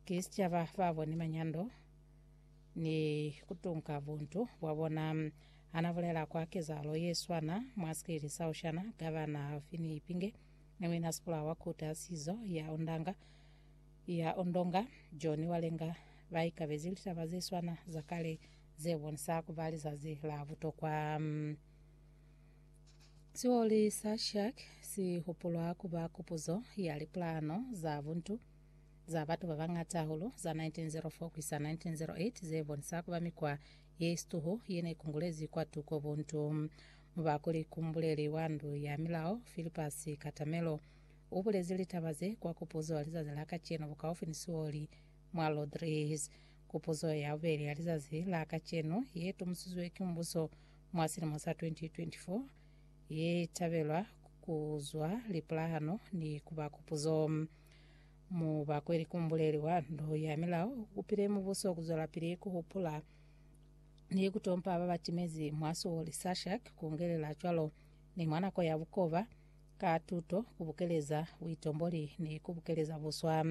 Ki sicaba ba boni manyando ni kutunka buntu bwa bona. Hana bulela kwa kezahalo ye swana mwa sikeli sa Oshana, Gavana Alfini Ipinge ni Muina Sipula wa Khuti ya Sizo ya Ondanga, ya Ondonga, Johnny Walenga ba ikabezi litaba ze swana za kale ze bonisa ku ba lizazi la butokwa. Sioli sa Shark si hupulwa ku ba kupuzo ya lipulano za buntu. za batu ba bañata hahulu za 1904 ku isa 1908 ze bonisa ku ba mikwa ye situhu ye ne kungulezi kwatuko buntu. Muba kuli kumbuleli wa ndu ya milao, Philippus Katamelo, u bulezi litaba ze kwa kupuzo ya lizazi la kacenu bukaufi ni sioli mwa Lodriz. Kupuzo ya bubeli ya lizazi la kacenu ye tumusizwe ki mubuso mwa silimo sa 2024 ye tabelwa ku zwa lipulahano ni ku ba kupuzo. Mu bakwe likumbuleli wa ndu ya milao ukupile mubuso kuzwelapili kuhupula ni kutompa babatimezi mwa suwo li Sashak, kungelela cwalo ni mwa nako ya bukoba, ka tuto, kubukeleza buitomboli ni kubukeleza buswa.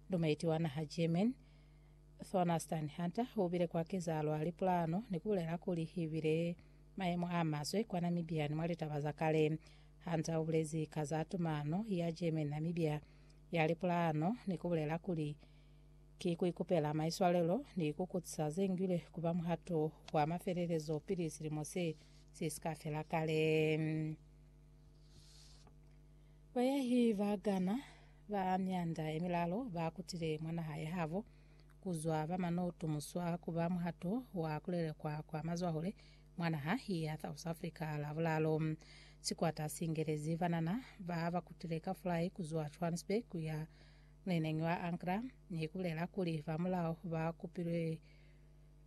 Lumeiti wa naha German, Thornastan Hunter, ubile kwa kezalo lipulano ni kubulela kuli ibile mayemo a maswe kwa Namibia ni mwa litaba za kale. Hunter u bulezi ka za tumano ya German-Namibia ya lipulano ni ku bulela kuli, Ki ku ikupela maiswalelo ni ku kutisa ze ngilwe ku ba muhato wa mafelelezo pili silimo se si si ka fela kale. Bayahi ba Ghana ba mianda ye milalo ba kutile mwa naha ya habo ku zwa ba manotu muswa ku ba muhato wa ku lelekwa kwa mazwahule Mwa naha ya South Africa, Lavulalo, sikwata si ngelezi banana ba ba kutile ka fulai ku zwa Johannesburg ku ya muleneñi wa Angra ni ku bulela kuli ba mulao ba kupilwe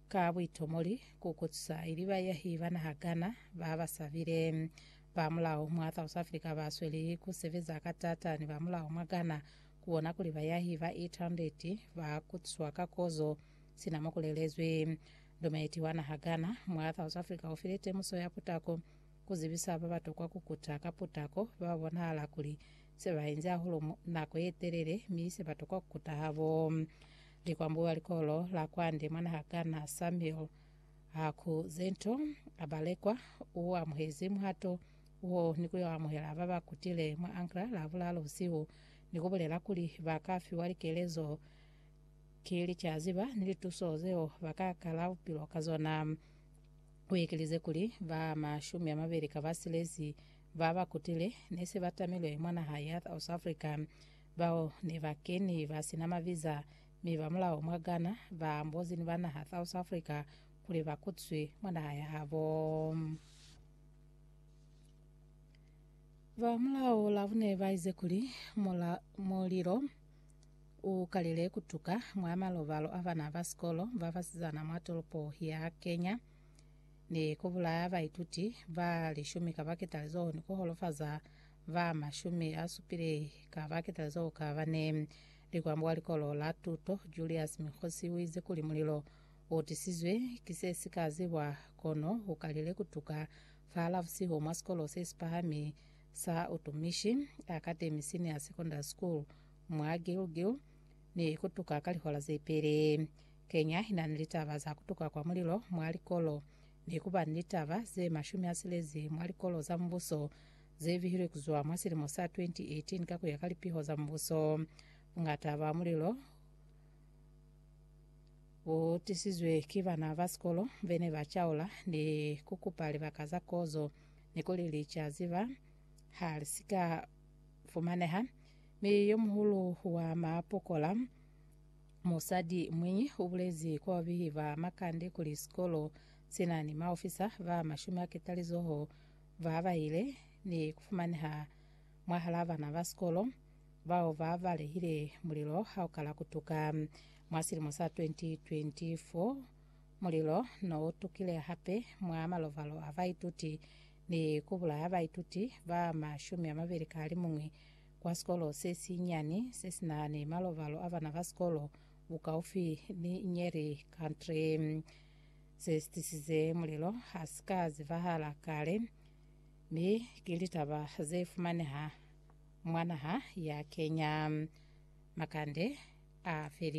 ka buitomoli ku kotusa ili baiyahi ba naha Ghana ba ba sabile. Ba mulao mwa South Africa ba sweli ku sebeza ka taata ni ba mulao mwa Ghana ku bona kuli baiyahi ba 800 ba kotuswa ka kozo sina mo ku lelezwi. Dometi wa naha Ghana, mwa South Africa ufile temuso ya putako kuzibisa babatokwa kukuta ka putako bababonahala kuli sebainzi hahulu nako yetelele mi sebatokwa kukuta habo. Likwambu wa likolo la kwande mwa naha Ghana, Samuel Haku-Zento Abalekwa, uamuhezi muhato wo nikuyo amuhela babakutile mwa Ankra Lavulalo busihu nikubulela kuli baka fiwa likelezo Ki licaziba ni lituso zeo ba ka kala bupilo ka zona. U ekelize kuli, Ba mashumi a mabeli ka ba silezi ba ba kutile ne se ba tamilwe mwa naha ya South Africa. Bao ne ba keni ba si na maviza mi ba mulao mwa Ghana ba ambozi ni ba naha South Africa kuli ba kutswi mwa naha ya habo. Ba mulao la bune ba ize kuli, Mulilo U kalile ku tuka mwa malobalo a bana ba sikolo ba basizana mwa tolopo ya Kenya ni ku bulaya baituti ba lishumi ka baketalizoho ni ku holofaza ba mashumi a supile ka baketalizoho ka bane. Likwambo wa likolo la tuto Julius Mikhosi u ize kuli mulilo u tisizwe ki se si ka zibwa kono u kalile ku tuka fa la busihu mwa sikolo se si pahami sa Utumishi Academy Senior Secondary School mwa Gilgil ni kutuka ka lihora zepeli. Kenya inani litaba za kutuka kwa mulilo mwa likolo ni kuba ni litaba ze mashumi asilezi mwa likolo za mubuso zebihilwe kuzwa mwa silimo sa 2018 ka kuya ka lipiho za mubuso. Bungata bwa mulilo butisizwe ki bana ba sikolo bene ba caula ni kukupa libaka za kozo ni kuli licaziba halisika fumaneha Mi yomuhulu wa maapokola, musadi mwiñi, ubulezi kwa babehi ba makande kuli sikolo sina ni maofisa ba mashumi a ketalizoho ba bahile ni kufumaneha mwahalaa bana ba sikolo bao ba balehile mulilo haukala kutuka mwa silimo sa 2024. Mulilo no utukile hape mwa malovalo a baituti ni ku bulaha baituti ba mashumi a mabeli ka halimuñwi kwa sikolo se si nyani se si na ni malobalo a bana ba sikolo bukaufi ni Nyeri Country, se si tisize mulelo ha si ka zibahala kale mi ki litaba ze fumaneha mwa naha ya Kenya. Makande a felile.